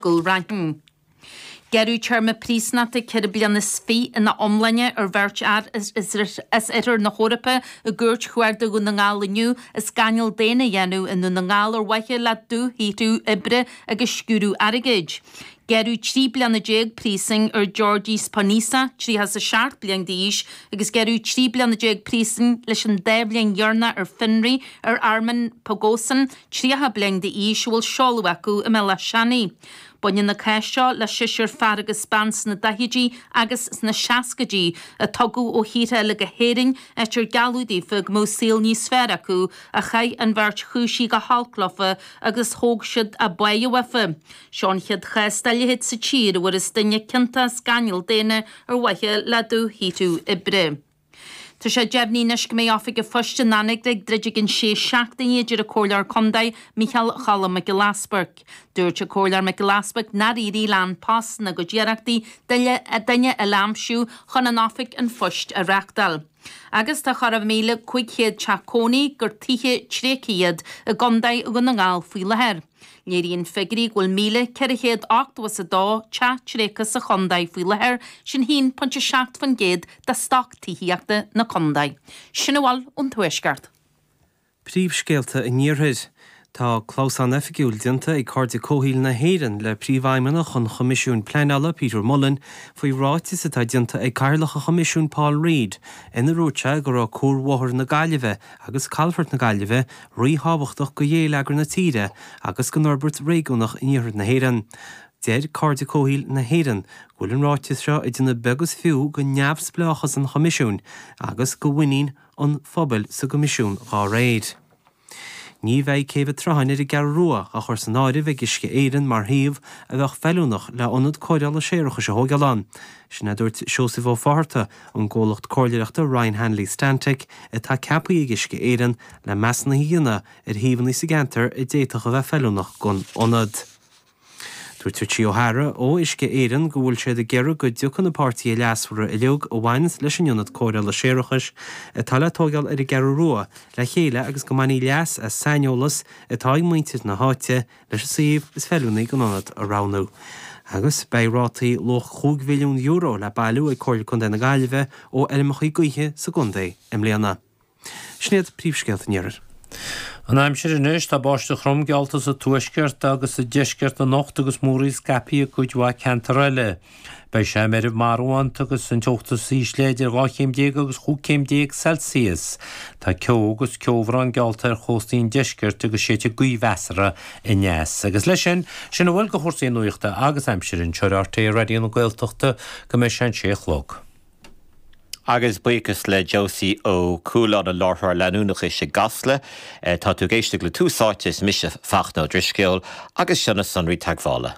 Gul Raithin. Gearradh téarma príosúnachta ceithre bliana is fiche ina iomláine ar bheirt fhear as oirthear na hEorpa i gCúirt Chuarda Dhún na nGall inniu as gáinneáil daonna a dhéanamh i nDún na nGall ar mhaithe le dúshaothrú oibre agus sciúradh airgid. Gearradh trí bliana déag príosúin ar Georgijs Poniza, tríocha is a seacht bliain d'aois, agus gearradh trí bliana déag príosúin leis an dá bhliain dheireanach ar fionraí ar Armen Pogosyan, 30 bliain d'aois a bhfuil seoladh acu i mBéal Átha Seanaidh. Baineann na cáis seo le seisear fear agus bean sna daichidí agus sna seascaidí a tugadh ó thíortha eile go hÉirinn áit ar gealladh daofa go mbeadh saol níos fearr acu ach chaith an bheirt chúisithe go holc leofa agus thóg siad a bpáighe uafa. Seo an chéad chás dá leithéid sa tír a bhfuarthas duine ciontach as gáinneáil daonna ar mhaithe le dúshaothrú oibre. Tá sé deimhnithe anois go mbeidh oifig an phoist in Anagaire ag druid i gceann sé seachtaine, a deir an Comhairleoir Contae, Micheál Choilm Mac Giolla Easbuic. Dúirt an Comhairleoir Mac Giolla Easbuic nár éirigh le An Post ina gcuid iarrachtaí duine eile a aimsiú chun an oifig an phoist a reachtáil. Agus tá chóir a bheith míle cúig chéad teach cónaí gur tithe tréigthe iad i gContae Dhún na nGall faoi láthair. Léiríonn figiúirí go bhfuil 1,482 teach tréigthe sa chontae faoi láthair, sin 1.7% de stoc tithíochta na contae. Sin a bhfuil ón Tuaisceart. Príomhscéalta an Iarthair. Tá clamhsán oifigiúil déanta ag Cairde Comhshaoil na hÉireann le Príomhfheidhmeannach an Choimisiúin Pleanála, Peter Mullan, faoi ráiteas atá déanta ag Cathaoirleach an Choimisiúin, Paul Reid, ina ndúirt sé go raibh cuarbhóthar na Gaillimhe agus Calafort na Gaillimhe, ríthábhachtach do ghéilleagar na tíre agus don fhorbairt réigiúnach in Iarthar na hÉireann. Deir Cairde Comhshaoil na hÉireann go bhfuil an ráiteas seo ag déanamh beag is fiú de neamhspleáchas an Choimisiúin agus de mhuinín an phobail sa gCoimisiún dá réir. Ní bheidh Céibh an tSrutháin ar an gCeathrú Rua á chur san áireamh ag Uisce Éireann mar shuíomh a bheadh feiliúnach le hIonad Cóireála Séarachais a thógáil ann. Sin é a dúirt Seosamh Ó Fátharta, ón gcomhlacht comhairleoireachta Ryan Hanley Stantec, atá ceaptha ag Uisce Éireann, le measúnuithe a dhéanamh ar shuíomhanna sa gceantar a d'fhéadfadh a bheith feiliúnach don ionad. Dúirt Richie O'Hara ó Uisce Éireann go bhfuil siad ag iarraidh go dtiocfadh na páirtithe leasmhara uilig a bhaineas leis an ionad cóireála séarachais atá le tóigeáil ar an gCeathrú Rua le chéile agus go mbainfí leas as saineolas atá ag muintir na háite leis an suíomh is feiliúnaí don ionad a roghnú agus beidh rátaí luach €5 mhilliún le bailiú ag Comhairle Contae na Gaillimhe ó fheirmeacha gaoithe sa gcontae i mbliana. Sin iad príomhscéalta an iarthair. An aimsir anois, tá báisteach throm geallta sa tuaisceart agus sa deisceart anocht agus múraíl scaipthe i gcuid mhaith ceantar eile. Beidh sé meirbh marbhánta agus an teocht is ísle idir dhá chéim déag agus chúig céim déag Celsius. Tá ceo agus ceobhrán geallta ar chóstaí an deiscirt agus séidfidh gaoth mheasartha aneas. Agus leis sin, sin a bhfuil de chúrsaí nuachta agus aimsire anseo ar RTÉ Raidió na Gaeltachta go mbeidh sé an sé a chlog. Agus buíochas le Josie Ó Cualáin, an láithreoir leanúnachais i gCasla. Tá tú ag éisteacht le Tús Áite, is mise Fachtna Ó Drisceoil agus seo na sonraí teagmhála.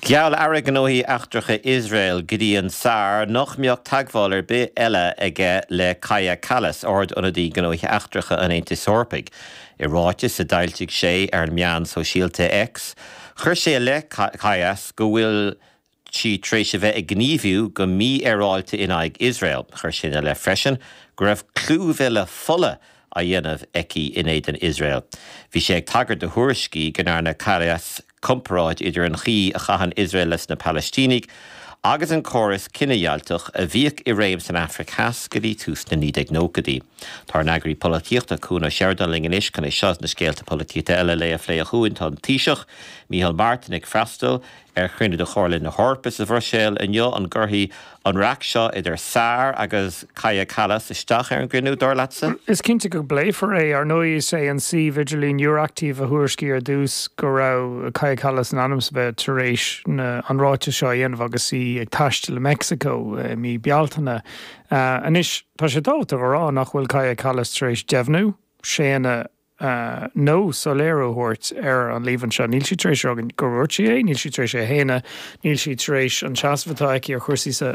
Gheall Aire Gnóthaí Eachtracha Iosrael, Gideon Saar, nach mbeadh teagmháil ar bith eile aige le Kaja Kallas, Ard-Ionadaí Gnóthaí Eachtracha an Aontais Eorpaigh. I ráiteas a d'fhoilsigh sé ar an meán sóisialta X, chuir sé i leith Kallas go bhfuil sí tar éis a bheith ag gníomhú go mífhéaráilte in aghaidh Iosrael. Chuir sé ina leith freisin go raibh clúmhilleadh fola á dhéanamh aici in éadan Iosrael. Bhí sé ag tagairt do thuairiscí go ndearna Kallas comparáid idir an chaoi a chaitheann Iosrael leis na Palaistínigh agus an córas cinedheighlteach a bhíodh i réim san Afraic Theas go dtí tús na 1990idí. Tá ár n-eagraí polaitíochta, Cuan Ó Seireadáin linn anois chun é seo is na scéalta polaitíochta eile an lae a phlé. A Chuain. Tá an Taoiseach, Micheál Martin ag freastal ar chruinniú de Chomhairle na hEorpa sa Bhruiséil inniu. An gcuirfidh An raic seo idir Saar agus Kaja Kallas isteach ar an gcruinniú, dar leatsa? Is cinnte go bpléifear é. Ar ndóigh, is é an suíomh idirlín Euractiv a thuairiscigh ar dtús go raibh Kaja Kallas in ainm is a bheith tar éis na an ráiteas seo a dhéanamh agus í ag taisteal i Meicsiceo i mí Bealtaine. Anois, tá sé tábhachtach a rá nach bhfuil Kaja Kallas tar éis deimhniú, séanadh, nó soiléiriú a thabhairt ar an líomhain seo. Níl sí tar éis a rá go ndúirt sí é, níl sí tar éis é a shéanadh, níl sí tar éis an seasamh atá aici ar chúrsaí sa.